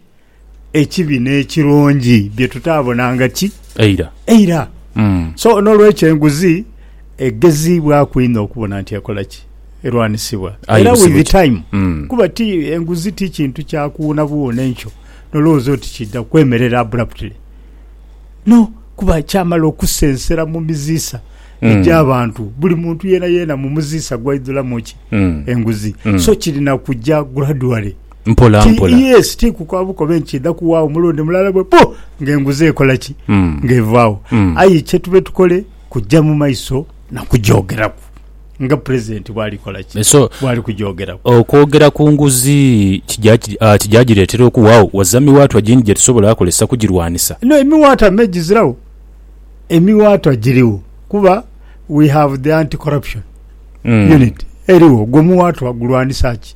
ekibi n'ekirungi bye tutaabonanga ki Eira. eira. Mm. So, n'olwekyo enguzi egeziibwaku inho okubona nti ekola ki? Erwanisibwa. Aye Era busibu with ki? time. Mm. Kuba ti enguzi ti kintu kya kuwuunabuwuuna enkyo n'olowooza oti kiidha kwemerera abruptly. No, kuba kyamala okusensera mu miziisa Mm. egy'abantu. Buli muntu yeenayeena mu muziisa gwaidhulamu ki? Mm. Enguzi. Mm. So, kirina kuja gradually. Mpola Ti- mpola. yes ti kukoba bukobe nti kidha kuwaagho mulundi mulala bwe pu nga enguzi ekola ki Mm. nga evaagho Mm. aye kyetube tukole kujja mu maiso na kugyogeraku nga president bwali kola ki So bwali kugyogeraku okwogera ku nguzi kija ki- ah, kija gireetera okuwaagho waza miwaatwa gindi gye tusobola akozesa kugirwanisa? no emiwaatwa me gizirawo emiwaatwa giriwo kuba we have the anti corruption Mm. unit eriwo gwo muwaatwa gulwanisa ki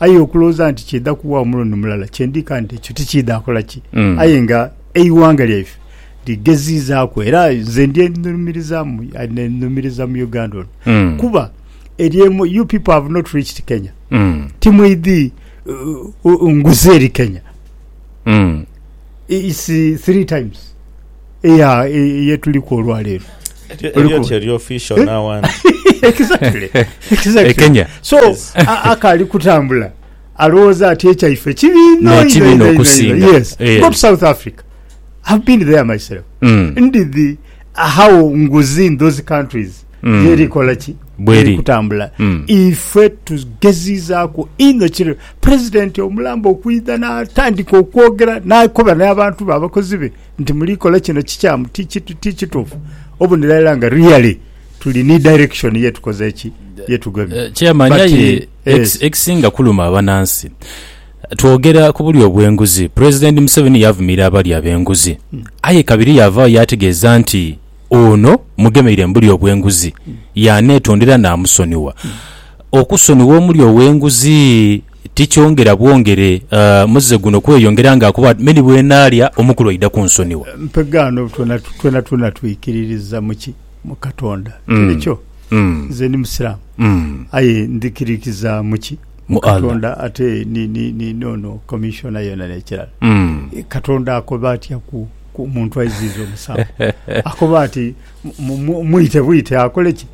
Aye okulowooza nti kyeidha kuwaawo mulundi mulala kyendi kandi ekyo tikiidha kola ki? Mm. Aye nga eighanga lyaife ligeziizaaku era nze ndyenhumirizaamu nenhumiriza mu Uganda ono Mm. kuba eryemu you people have not reached Kenya Mm. timweidhi uh, uh, nguzi eri Kenya Mm. it's uh, three times Yeah, eh, ye tuliku olwaleero. Elyo- Oli elyo ku- kye lyo official Eh? now one. Exactly, exactly. E Kenya. So, a- akaali kutambula alowooza ati ekyaife kibi inho, Ne inho, kibi inho, inho inho, okusinga. inho. Yes. Eh. Go to South Africa. I've been there myself. Mm. Ndi the how nguzi in those countries Mm. yeri kola ki Bweri. Yeri kutambula Mm. ife tugezizaako inho kiri president omulamba okwidha n'atandika okwogera n'akoba n'abantu be abakozi be nti muli kola kino kikyamu ti kitufu obunira ela nga really tuli ni direction yetukoze eki yetugemye eh, chairman aye ekisinga kuluma abanansi twogera ku buli obwenguzi president museveni yavumira abali abenguzi hmm. aye kabiri yavaayo yategeeza nti ono mugemeire mbuli obwenguzi hmm. yanetondera namusoniwa hmm. okusoniwa omuli owenguzi Ti kyongera bwongere muze guno kweyongera nga akuba ati, Me ni bwenaalya omukulu aidha kunsonigha. Mpegaano twenatwena twikiririza mu ki? Mu Katonda. Tinikyo? Nze ndi Musiraamu, aye ndhikiririza mu ki? Mu Katonda ate ni, ni, ni, n'ono Commissioner yena n'ekirala. Katonda akoba atya ku, ku muntu aiziiza omusango? Akoba ati, Mu, mu, mwite bwite akole ki?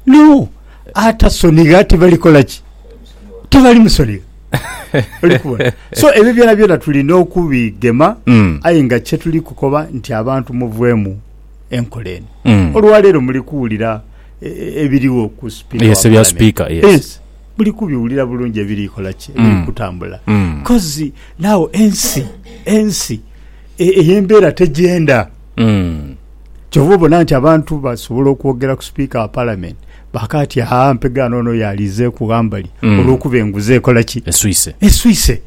No! Atasonigha tibali kola ki? Tibali musonigha. Oli kubona? So ebyo byona byona tulina okubigema Mm. aye nga kye tuli kukoba nti abantu muveemu enkola eno. Mm. Olwaleero muli kuwulira e- e- ebiriwo ku sipiika Yes, wa ebya Palamenti. sipiika, yes. Muli kubiwulira bulungi ebiri kola ki? Ebiri Mm. kutambula. Mm. Kozi naawo ensi ensi e- ey'embeera tegyenda. Kyova obona nti abantu basobola okwogera ku sipiika wa palamenti baka ati aa mpegaano ono yalizeeku ghambali olwokuba enguzi ekola ki? Eswise. Eswise.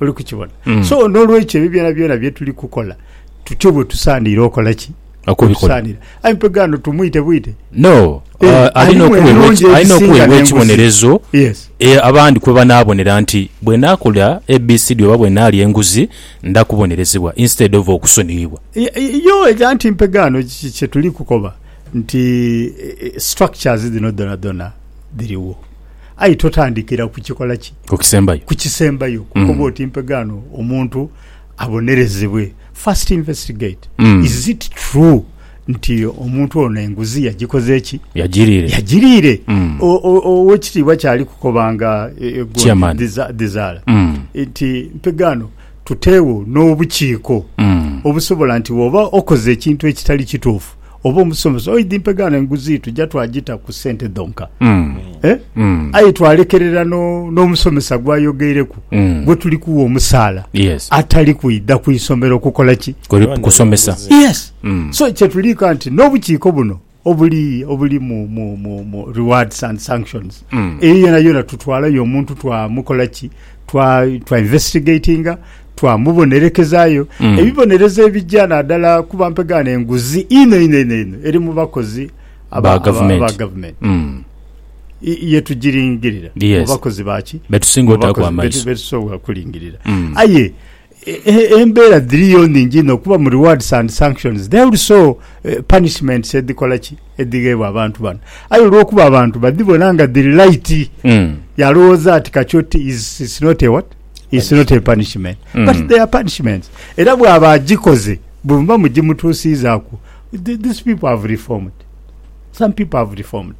Oli kukibona? So n'olwekyo ebyo byonabyona bye tuli kukola tutyo bwe tusaanire okola ki? Okubikola. Tusaanire. Aye mpegaano tumwite bwite? No. Eh, Ah, Alina alimu okuweebwa emirundi eki- alina egisinga okuweebwa n'enguzi. ekibonerezo Yes. e, abandi kwe banaabonera nti bwe naakola ABCD oba bwe naalya enguzi Nda kubonerezebwa instead of okusoniyibwa. Yoo ega nti mpegaano kiki kyetuli kukoba nti structures dhino dhona dhona dhiriwo aye totandikira ku kikola ki? Ku kisembayo. Ku kisembayo kukoba mm. oti mpegaano omuntu abonerezebwe. First investigate mm. is it true Nti omuntu ono enguzi yagikoze ki? Yagiriire. Yagiriire. Mm. Owekitiibwa kyali kukoba nga egondi dhizaala nti mpegaano tuteewo n'obukiiko mm. obusobola nti woba okoze ekintu ekitali kituufu oba omusomesa oidhi mpegaano enguzi tujja twagita ku sente dhonka mm. eh? mm. aye twalekerera n'omusomesa no gwayogeireku mm. gwe tuli kuwa omusaala yes. atali kwidha ku isomero kukola ki kusomesa yes. Mm. So kyetuliika nti n'obukiiko buno obuli obuli mu, mu, mu, mu rewards and sanctions mm. eyo yona yona tutwalayo omuntu twamukola ki twa, twa investigatinga twamubonerekezayo mm. ebibonerezo ebijja naddala kuba mpegaana enguzi ino ino ino ino eri mu bakozi aba gavumenti mm. yetugiringirira yes. mu bakozi baki betusinga otaku amaiso betusobola kulingirira mm. aye Embeera dhiriyo nhingi inho kuba mu rewards and sanctions there are also punishments edhikola ki? edhigheebwa abantu bano. Aye olwokuba abantu badhibona nga dhiri light yalowooza nti kati oti it's not a what? It's not a punishment. But they are punishments. Era bwaba agikoze bwemuba mugimutuusiizaaku these people have reformed. Some people have reformed.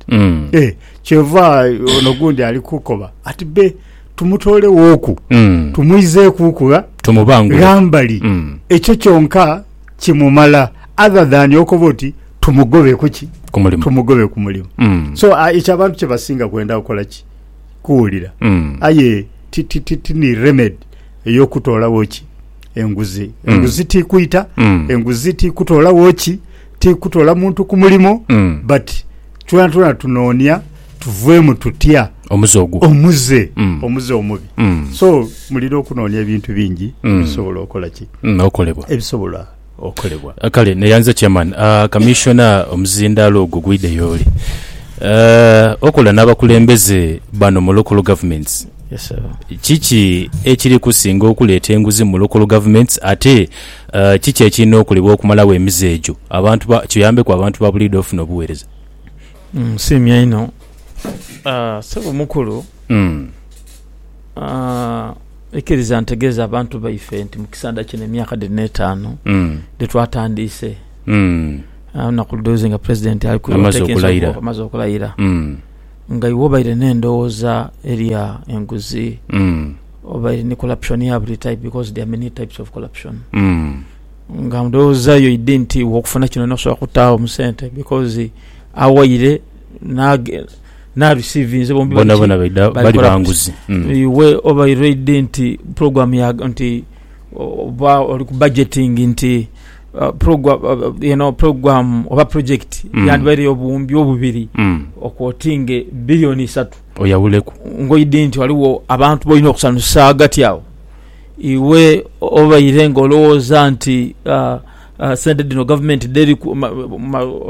Eeh kyova ono ogundi ali kukoba ati be Tumutoolewooku, tumwizeekuuku gha. Tumubangule. Ghambali. Ekyo kyonka kimumala other than okoba oti tumugobe ku ki? Ku mulimu. Tumugobe ku mulimu. So, ekyo abantu kye basinga kwenda kukola ki? Kuwulira. Aye ti, ti, ti, ti ni remedy ey'okutoolawo ki? Enguzi. Enguzi ti kwita, enguzi ti kutoolawo ki? Ti kutola muntu ku mulimu, but. Twonatwona tunoonia tuveemu tutya Omuze ogwo. omuze Mm. omuze omubi Mm. so mulina okunoonia ebintu bingi Mm. ebisobola okola ki Mm, okolebwa. ebisobola okolebwa Ah, Kale neyanza chairman ah, commissioner omuzindaalo ogwo gwide yooli Eh, okola n'abakulembeze bano mu local governments Yes, sir. kiki ekiri kusinga okuleeta enguzi mu local governments ate Kiki ekirina okolebwa okumalagho emize egyo abantu ba kiyambeku abantu ba buliidho ofuna obuweereza? Nsiimye inho Ssebo mukulu. Ikiriza ntegeeze abantu baife nti mu kisaandha kino emyaka dhiri n'etaanu dhitwatandiise, olunaku ludhuuzi nga Pulezidenti ali ku amaze okulayira, nga iwe obaire n'endhoghoza eya enguzi. Oba eri ni corruption ya buli type because there are many types of corruption. Nga ndhowooza yo idi nti iwe okufuna kino nosobola kutaagho mu sente because awaire n'age- n'arecivinze bombi bali ki? Bonabona baidha bali bali corrupt. banguzi. Mm. Iwe obaire oidhi nti program ya nti oba oli ku budgeting nti uh, program, uh, eno program oba project Mm. yandibaire ey'obuwumbi obubiri Mm. okwotinge billion isatu. Oyawuleku ngoyi dhi nti ghaligho abantu b'olina okusanusa ghagati agho. Iwe obaire ng'olowooza nti sente dhino gavumenti dheriku,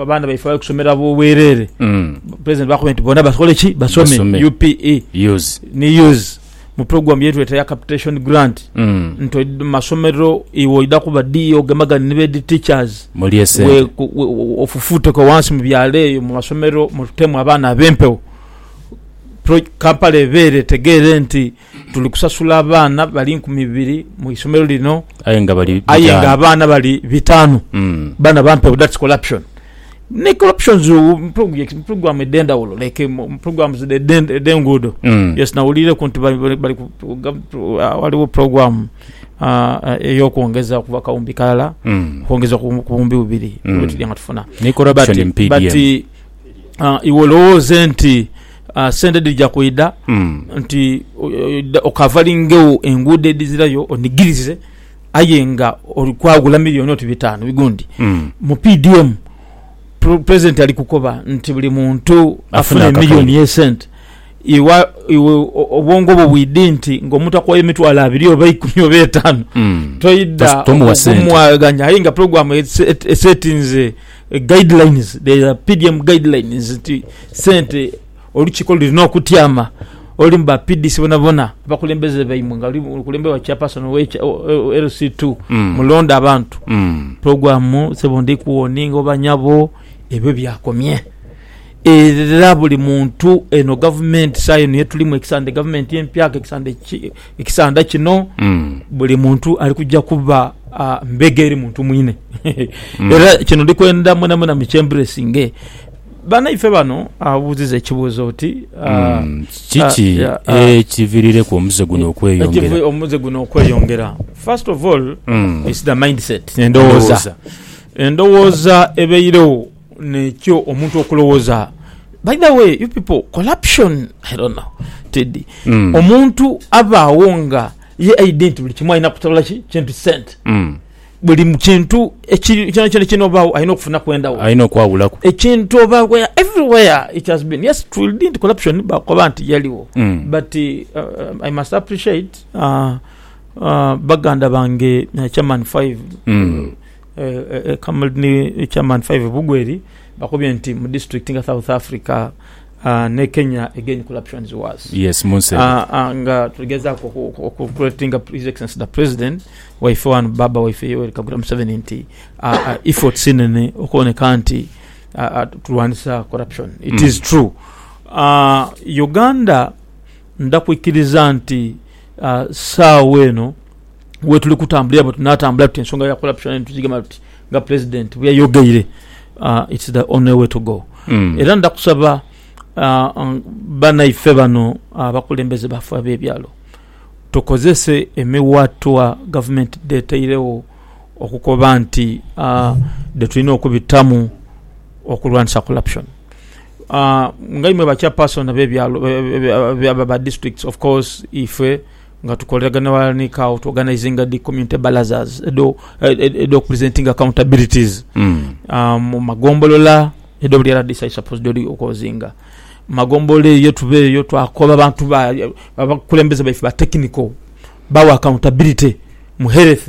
abaana baife abali kusomera bwereere, pulezidenti baakubye nti bona basobole ki? Basome UPE ni use mu pulogulaamu ye tweeta eya Capitation Grant nti oidha mu masomero iwe oidha kuba ddi ogemagane ni beedi tichazi ofufuuteku ghansi mu byalo eyo mu masomero mutemu abaana ab'empewo. Kampala ebeere etegeere nti tuli kusasula abaana bali nkumi ibiri mu isomero lino aye nga bali aye nga abaana bali bitaanu mm. bana bampe that's corruption ne corruptions program edendawulo like programs edenguudo mm. yes nawulireku nti bali uh, waliwo program uh, uh, eyokwongeza okuva kawumbi kalala mm. kwongeza ku bumbi bubiri mm. nga tufuna ne corruption but, but, ah, iwe olowooze nti ah, sente dhija kwidha Mm. nti o- o- okavalingewo enguudo edhizirayo onigirize aye nga oli kwagula miliyoni oti bitaanu bigundi Mm. mu pdm pre- president ali kukoba nti buli muntu Afune afune akakaire. miliyoni yesente iwa iwe o- obwongo bwo bwidi nti ngaomuntu akwayo emitwalo abiri oba ikumi oba etaano Mm. toida Tos- tomuwa sente. okumwaganya aye nga programu ese- esetinze Guidelines, there are PDM guidelines nti sente olukiiko lulina okutyama olulimu ba PDC bonabona, abakulembeze baimwe nga luli lukulemberwa Chairperson we LC ii, Mm. mulonde abantu. Mm. Program, sebo ndi kuwoninga oba nyabo, ebyo byakomye. Era buli muntu eno gavumenti saha eno yetulimu ekisande gavumenti empyaka ekisande ekisanda kino buli muntu ali kuja kuba mbega eri muntu mwine era kino ndi kwenda mwena mwena mu kyemburesinge banaife bano abuziza ekibuzo oti kiki ekivirireku omuze guno okweyongera omuze guno okweyongera first of all is the mindset endowoza endowoza ebeirewo Nekyo omuntu okulowoza by the way you people corruption i don't know teddy mm. omuntu abaawo nga ye identi buli kimu alina kutabula ki kintu sente mm. buli kintu kyona kyona kyona obaawo alina okufuna kwendawo alina okwawulaku ekintu oba where everywhere it has been yes true didn't corruption bakoba nti yaliwo mm. but uh, i must appreciate uh, uh, baganda bange uh, chairman 5 mm. uh, Kamulni Chairman Five Bugweri bakubye nti mu district nga South Africa ne Kenya again corruption is worse. Yes munsi eno. Nga tuligezaku oku creatinga His Excellency the President waife wano Baba waife Yoweri Kaguta Museveni nti efforts inene okuboneka nti tulwanisa corruption. It is true Uganda nda kwikiriza nti saawa eno. wetuli kutambulira bwe tunatambula tuti ensonga ya corruption eno tugigema tuti nga president bwe yayogeire uh, it's the only way to go mm. era ndakusaba uh, um, banaife bano abakulembeze uh, bafe abebyalo tukozese emiwatwa gavumenti deteirewo okukoba nti uh, detulina okubitamu okulwanisa corruption uh, nga imwe bachapason abebyalo ba districts of course ife Nga tukoleragana ghalala ni CAO, tuorganizinga dhi community barazas edh'okupresentinga accountabilities mu magombolola edho buli rdc ali supposed odi okozinga mu magombolola eyo. Ye tuba eyo twakoba abantu ba, abakulembeze baife ba technical bagho accountability mu health.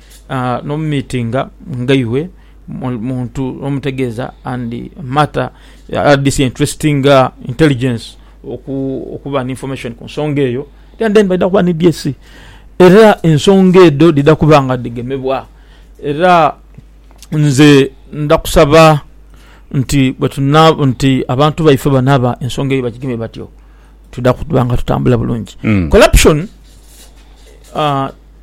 nomumitinga ngaibwe muntu omutegeza and matter this interesting intelligence okuba ne information kunsonga eyo and then baidha kuba ne dse era ensonga edho dhidha kuba nga dhigemebwa era nze ndha kusaba nti abantu baife bano aba ensonga eyo bagigeme batyo twidha kuba nga tutambula bulungi corruption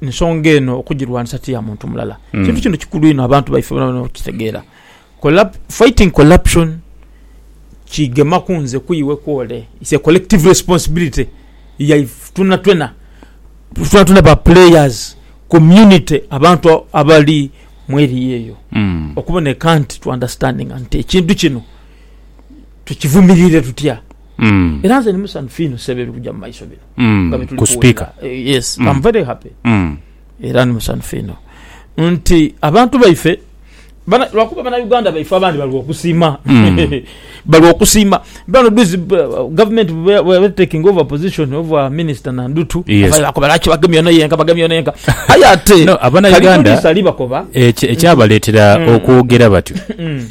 ensonga eno okugirwanisa ti ya muntu mulala. Mm. Ekintu kino kikulu inho abantu baife bona bona okukitegeera. Collab, fighting corruption kigema ku nze, ku iwe, ku ole. It's a collective responsibility yaife twena twena. Twena twena ba players, community, abantu abali mu area eyo. Mm. Okuboneka nti to understandinga nti ekintu kino tukivumirire tutya. era nze ndi musanhufu inho ssebo ebiri kuja mu maiso bino nga bye tuli kuwulira. Yes, I'm very happy era ndi musanhufu inho nti abantu baife lwakuba Banauganda baife abandi bali okusiima bali okusiima bano dhuzi government bweba eri taking over position of our minister Nandutu bakoba lwaki bagemye ono yenka bagemye ono yenka aye ate Kali police alibakoba. Ekyabaletera okwogera batyo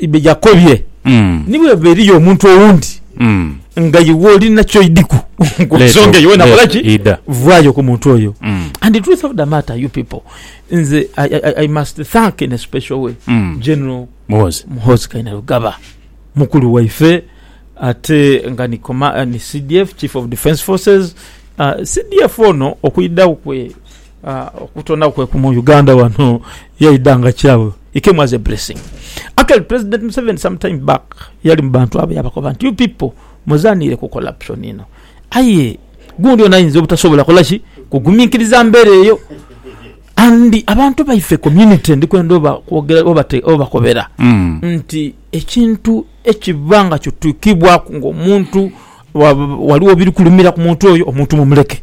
Yakobye, ni bw'eba eriyo omuntu owundi nga iwe olina ky'oidhiku ku nsonga eyo, wena kola ki? Vaayo ku muntu oyo. And the truth of the matter you people, nze I must thank in a special way General Muhoozi Kainerugaba, mukulu waife ate nga ni CDF, Chief of Defence Forces. CDF ono okwidhagho kwe. Ah okutonagho kwe ku mu Uganda ghano yaidha nga kyawe he came as a blessing actually president Museveni some time back yali mu bantu abo yabakoba nti you pipo muzanhire ku corruption ino aye gundi ono ayinza obutasobola kola ki kuguminkiriza mbera eyo and abantu baife community ndi kwenda oba kwogera oba kobera nti ekintu ekiba nga kitukibwaku nga omuntu ghaligho ebiri kulumira ku muntu oyo omuntu mumuleke.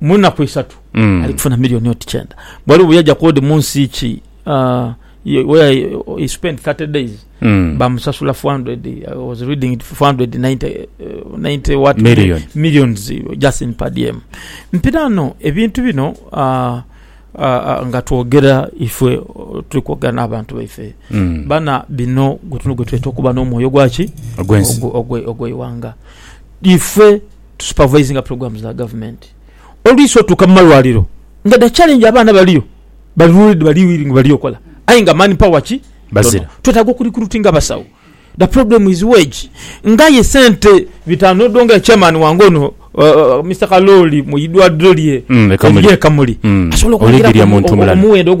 mu nnaku isatu mm. ali kufuna milioni oti kyenda bwali buyaja kodi mu nsi ki uh, where he spent 30 days mm. bamusasula 400 I was reading it 490 uh, 90 what Million. millions just in padm mpirano ebintu bino uh, Uh, uh, nga twogera ifwe uh, tuli kwogera n'abantu baife mm. bana bino gwetuno gwetweta okuba n'omwoyo gwaki ogweiwanga ife to supervisinga programs dha government olwisi otuuka mumalwaliro nga da challenge abaana baliyo bali ruled bali willing bali okola aye nga man power ki Bazira. Ntono. Twetaaga oku recruitinga abasawo da problem is wage ngaye sente bitaanu odo ngaye chairman wange ono uh, Mister Kalooli mu idwaliro lye Mm, e Kamuli. erye Kamuli Mm. asobola Oli okwongeraku Gilya muntu omulala. omuwendo ogwa